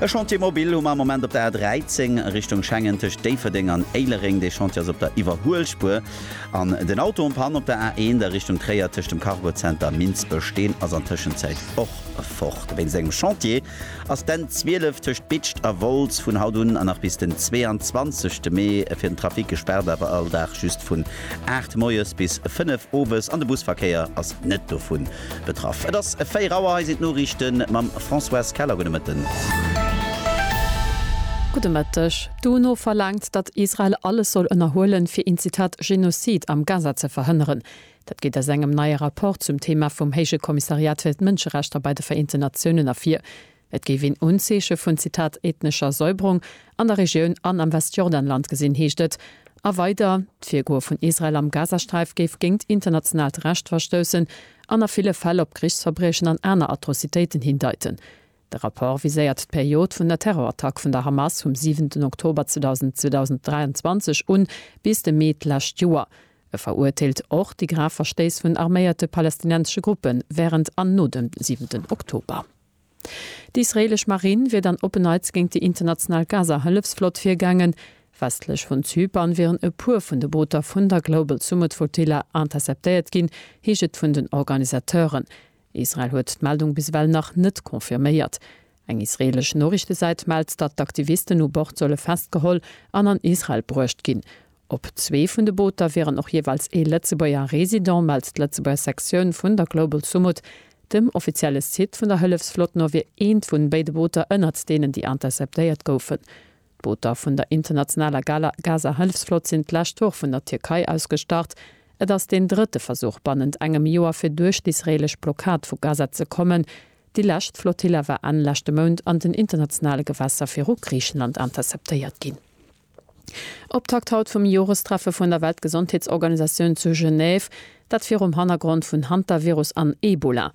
E Chantier mobil hu mer am Moment op der A13 Richtung Schengen tëscht Déifferdeng an Éilereng. Dee Chantier ass op der Iwwerhuelspuer. An den Auto en Panne op der A1 a Richtung Tréier tëscht dem Cargozenter Minsbech. Deen ass an Tëschenzäit och fort. Wéinst engem Chantier ass d'N 12 tëscht Bitscht a Wolz vun haut un a nach bis den 22. Mee fir den Trafic gespaart, awer all Dag just vun 8 moies bis 5 owes. An de Busverkéier ass net dovun Betraff. Et ass 4 Auer, hei sinn d'Noriichten mam Françoise Keller. Gudde Mëtten. Gudde Mëtteg. D'UNO verlaangt, datt Israel alles soll ënnerhuelen, fir een Zitat Genozid am Gaza ze verhënneren. Dat geet aus engem neie Rapport zum Thema vum Héije Kommissariat fir d'Mënscherechter bei de Vereenten Natiounen ervir. Et géif een Unzeeche vun, Zitat, ethnescher Säuberung an der Regioun an am Westjordanland gesinn, heescht et. A weider, D'Virgoe vun Israel am Gazasträif géif géint internationaalt Recht verstoussen an a ville Fäll op Krichsverbriechen an aner Atrocitéiten hindeiten. De Rapport viséiert d'Period vun der Terrorattack vun der Hamas vum siwenten Oktober 2023 un bis de Mee d'lescht Joer. E veruerteelt och déi grav Verstéiss vun arméierte palästinensesche Gruppe wärend an no dem siwenten Oktober. D'israeelesch Marinn wier dann op en Neits géint déi international Gaza-Hëllefsflott virgaangen. Westlech vun Zypern wieren e puer vun de Booter vun der Global Summit Flotilla interceptéiert ginn, heescht et vun den Organisateuren. Israel huet d'Meldung bis ewell nach net confirméiert. Eng israeelesch Noriichtesäit mellt, datt d'Aktivisten u Bord solle festgeholl an an Israel bruecht ginn. Op zwee vun de Booter wieren och jeeweils ee Lëtzebuerger Resident, mellt d'Lëtzebuerger Sektioun vun der Global Sumud. Dem offizielle Site vun der Hëllefsflott no wier eent vun béide Booter ënnert deenen, déi interceptéiert goufen. D'Booter vun der internationaler Gaza-Hëllefsflott sinn d'lescht Woch vun der Tierkei aus gestart. Et ass deen drëtte Versuch bannent engem Joer, fir duerch d'israeelesch Blockad vu Gaza ze kommen. Déi lescht Flotilla war Enn leschte Mount an den internationale Gewässer viru Griichenland interceptéiert ginn. Optakt haut vum Jorestreffe vun der Weltgesondheetsorganisatioun zu Genève, dat virum Hannergrond vun Hantavirus an Ebola.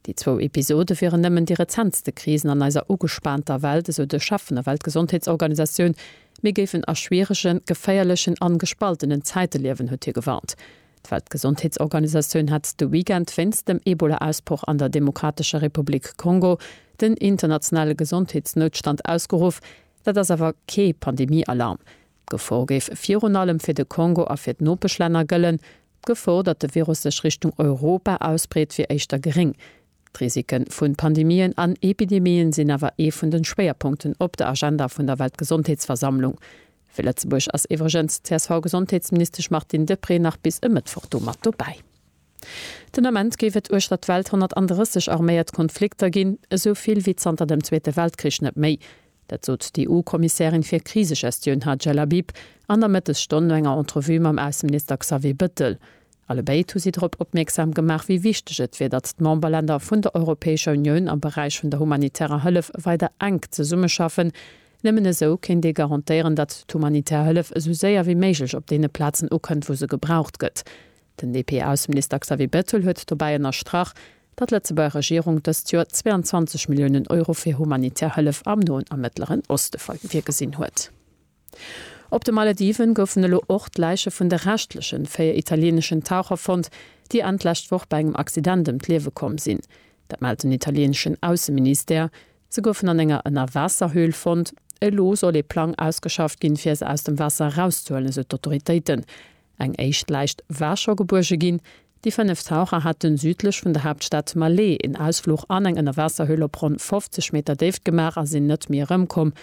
Déi zwou Episode wieren nëmmen déi rezentste Krisen an eiser ugespaanter Welt, esou de Chef vun der Weltgesondheetsorganisatioun. Mir géifen a schwierege, geféierlechen an gespaltenen Zäite liewen, huet hie gewarnt. D'Weltgesondheetsorganisatioun hat de Weekend wéinst dem Ebola-Ausbroch an der Demokratescher Republik Kongo den internationale Gesondheetsnoutstand ausgeruff, Dat ass awer kee Pandemie-Alarm. D'Gefor géif virun allem fir de Kongo a fir d'Nopeschlänner gëllen. D'Gefor, datt de Virus sech Richtung Europa ausbreet, wier éischter geréng. D'Risike vu Pandemien an Epidemien sinn awer ee vun de Schwéierpunkten op der Agenda vun der Weltgesondheetsversammlung. Fir Lëtzebuerg ass iwwregens d'CSV-Gesondheetsministesch Martine Deprez nach bis e Mëttwoch do mat dobäi. Den Ament géif et uechter d'Welt 130 arméiert Konflikter ginn, esou vill wéi zanter dem Zweete Weltkrich net méi. Dat sot d'EU-Kommissärin fir Krisegestioun Hadja Labib an der Mëttesstonn no enger Entrevue mam Ausseminister Xavier Bëttel. Allebéid hu si drop opmierksam gemaach, wéi wichteg et wier, datt d'Memberlänner vun der Europäescher Unioun am Beräich vun der humanitärer Hëllef weider enk zesummeschaffen. Nëmmen esou kéint ee garantéieren, datt d'humanitär Hëllef esou séier wéi méiglech op deene Plazen ukënnt, wou se gebraucht gëtt. Den DP-Ausseminister Xavier Bettel huet dobäi ënnerstrach, datt d'Lëtzebuerger Regierung dëst Joer 22 Milliounen Euro fir humanitär Hëllef am Noen a Mëttleren Oste virgesinn huet. Op de Malediven goufen elo och d'Läiche vun de reschtleche véier italieeneschen Taucher fonnt, déi Enn d'lescht Woch bei engem Accident ëm d'Liewe komm sinn. Dat mellt den italieeneschen Ausseministère. Se goufen an enger Ënnerwaasserhöhl fonnt. Elo soll ee Plang ausgeschafft ginn, fir se aus dem Waasser erauszehuelen, esou d'Autoritéiten. Eng éischt Läich war scho gebuerge ginn. Déi fënnef Taucher haten südlech vun der Haaptstad Malé een Ausfluch an eng Ënnerwaasserhöhl op ronn 50 Meter Déift gemaach a sinn net méi erëmkomm.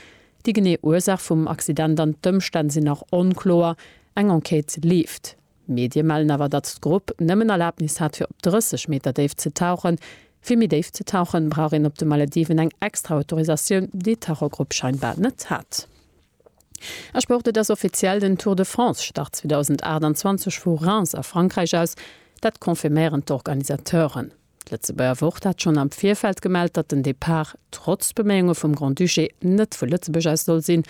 Déi genee Ursaach vum Accident an d'Ëmstänn sinn nach onkloer. Eng Enquête leeft. Medie mellen awer, datt d'Grupp nëmmen Erlabnis hat fir op 30 Meter Déift ze tauchen. Fir méi déif ze tauchen, brauch een op de Malediven eng extra Autorisatioun, déi d'Tauchergrupp scheinbar net hat. A Sport, Et ass offiziell, den Tour de France start 2028 vu Reims a Frankräich aus. Dat confirméieren d'Organisateuren. D'Lëtzebuerger Wort hat schonn am Virfeld gemellt, datt den Depart trotz Beméiunge vum Grand-Duché net vu Lëtzebuerg aus soll sinn.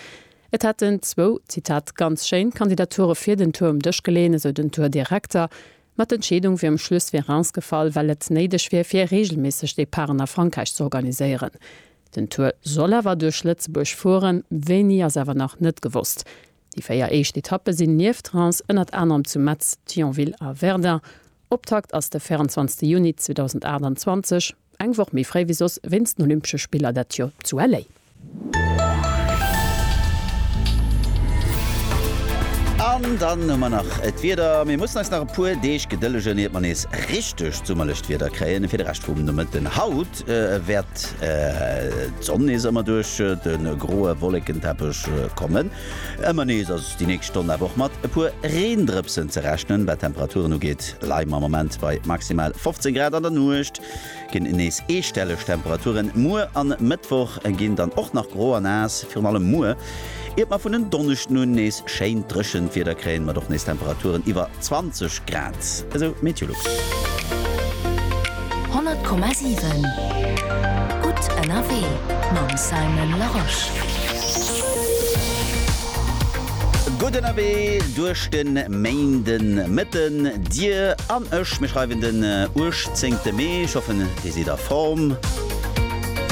Et hätten zwou, Zitat, ganz schéin Kandidature fir den Tour um Dësch geleeën, esou den Tour-Direkter. Ma d'Entscheedung wier um Schluss fir Reims gefall, well et néideg wier, fir reegelméisseg Departen a Frankräich z'organiséieren. Den Tour soll awer duerch Lëtzebuerg fueren, wéini ass awer nach net gewosst. Déi véier éischt Etappe sinn nieft Reims ënnert anerem zu Metz, Thionville a Verdun. Optakt ass de 24 Juni 2028, eng Woch méi fréi wéi soss wéinst den Olympesche Spiller dat Joer zu LA. An dann hu mer nach d'Wieder. Mir mussen eis nach e puer Deeg gedëllegen, iert mer nees richtegt summerlecht Wieder kréien. Fir de Rescht vum Nomëtten haut Nuecht wäert d'Sonn nees ëmmer duerch de groe Wollekenteppech kommen. Ëmmer nees ass déi nächst Stonn awer och mat e puer Reendrëpsen ze rechnen. Wat d'Temperaturen ugeet, leie mer am Moment bei maximal 15 Grad. An der Nuecht ginn nees eestelleg Temperaturen. Muer a Mëttwoch ginn dann och nach gro a naass. Virun allem muer Iert mer vun en Donneschden un nees schéint dréchent Wieder kréien, mat och nees Temperaturen iwwer 20 Grad, esou d'Meteolux. 100,7 gutt ënnerwee mam Simon Larosche. Gutt ënnerwee duerch de Méindemëtten, dir an ech. Mir schreiwen den 18 Mee. Ech hoffen dir sidd a Form.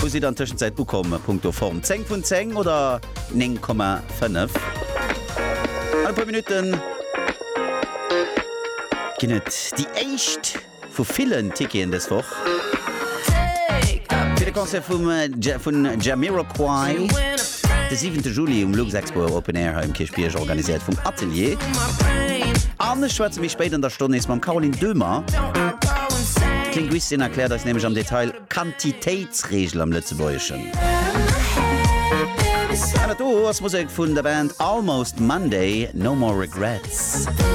Wou sidd der an Tëschenzäit ukomm punkto Form? 10 vun 10 oder 9,5? An e puer Minutten ginn et déi éischt vu villen Ticketen dës Woch fir de Concert vum vun Jamiroquai de siwente Juli um Luxexpo Open Air hei um Kierchbierg, organiséiert vum Atelier. An ech schwätze méi spéit an der Stonn nees mam Caroline Döhmer, d'Linguistin erkläert eis nämlech am Detail, Quantitéitsreegel am Lëtzebuergeschen. An dat do ass Musek vun der Band Almost Monday, No More Regrets.